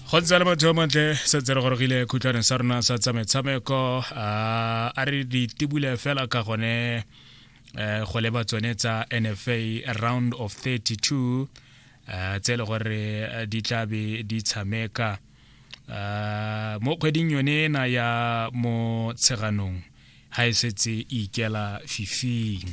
go ntse le motho montle setse re gorogile khutlwaneng sa rona sa tsa metshameko ah, a re di tibule fela ka gone eh, go leba tsone tsa nfa round of 32 eh, tse e le gore eh, di tla be di tshameka ah, mo kgweding yone ena ya motsheganong ga e setse e ikela fifing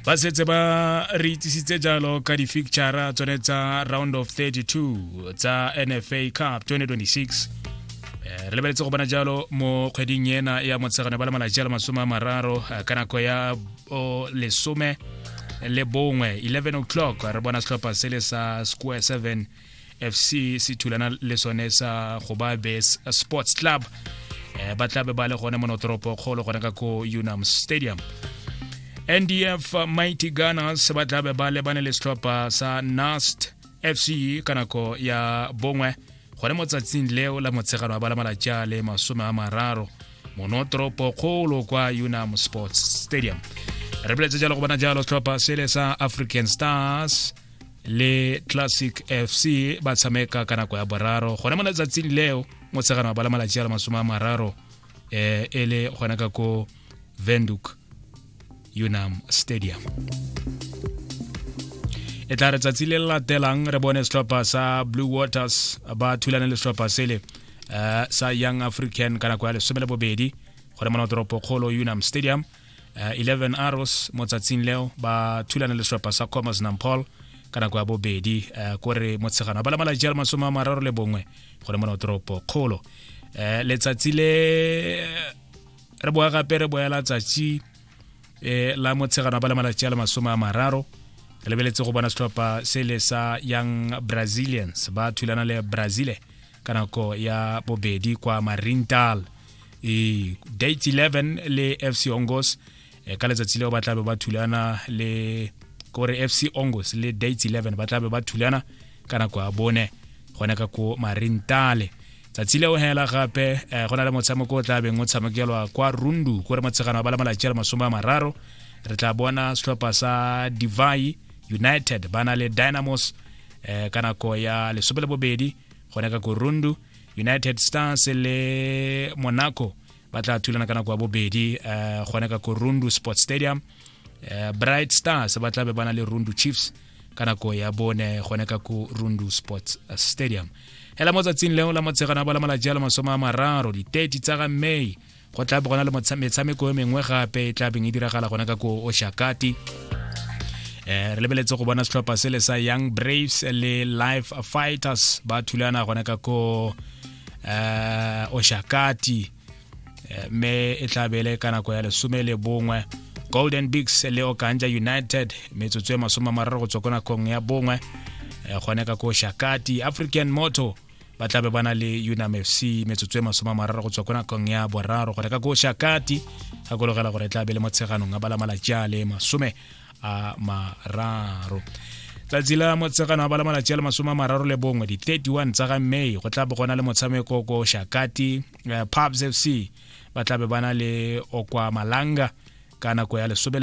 ba setse ba re itsisitse jalo ka di-ficture tsone tsa round of 32 tsa nfa cup 2026 eh, re lebeletse go bona jalo mo kgweding ena ya motshegane ba le malatsi a le masome a mararo eh, ka nako ya lesome le bongwe 11 o'clock re bona setlhopha se le sa square 7 fc se thulana le sone sa gobabes sports club um ba tlabe ba le gone monotoropo kgolo gone ka ko unam stadium ndf mighty gunners ba tlabe ba lebane le setlhopha sa nast fc ka nako ya bongwe gone mo tsatsing leo la motshegano wa ba la malatsi a le masome a mararo monotoropo kgolo kwa unam sports stadium re boletse jalo go bona jalo setlhopha sele sa african stars le classic fc ba tshameka ka nako ya boraro gone mo letsatsing leo motshegano wa bala malatsi a le masome a mararo um e le gona ka ko venduk unam stadium e tla re tsatsi le le latelang re bone setlhopha sa blue waters ba thulane le setlhopha sele um sa young african ka nako ya lesome le bobedi gone mo notoropo kgolo unam stadium uh, eh, 11 arrows mo tsatsing leo ba thulana le setlhopha sa commerce nampol ka nako ya bobedi uh, ko re motshegano ba lamala jalo masome a mararo le bongwe go le mona toropo kgolo um letsatsi le re boa gape re boela tsatsi um la motshegano ba lamala jalo masome a mararo re lebeletse go bona setlhopha se le sa young brazilians ba thulana le brazile ka nako ya bobedi kwa marintal e date 11 le fc ongos e, ka letsatsi leo ba tlabe ba thulana le kore fc ongos le date 11 ba tlabe ba thulana ka nako ya bone gone ka ko marintale tsatsi leo hela gape eh, go na le motshameko o tlabeng o tshamekelwa kwa rundu kore motshegano wa ba le malatsi a le masome a mararo re tla bona setlhopha sa divai united ba na le dynamos eh, ka nako ya lesome le bobedi gona ka korundu united stars le monaco ba tla thulana ka nako ya bobedi um gone ka korundu sports stadium um bright stars ba tla be ba na le rundu chiefs ka nako ya bone gone ka ko rundu sports stadium hela mo tsatsing leo la motshegana ba la malatsi a le masome a mararo di-30 tsa ga may go tla bo gona le metshameko e mengwe gape e tla beng e diragala gona ka ko oshakati um eh, re lebeletse go bona setlhopha sele sa young braves le life fighters ba thulana gona ka ko um oshakati eh, mme e tla bele ka nako ya lesome le bongwe golden bigs le okanja united metsotso e masome a mararo go tswa ko nakong ya bongwe gone ka ko shakati african motor ba tlabe ba na le unam fc metsotso e masoma mararo go tswa ko nakong ya boraro gore ka ko shakati gakologela gore e tla be le mo tsheganong a bala malatsi a le masome a mararo tsatsi la motsegano a bala malatsi a le masome a mararo le bongwe di-31 tsa ga may go tla bo gona le motshameko ko shakati uh, eh, pubs fc ba tlabe ba na le okwa malanga ka nako ya lesome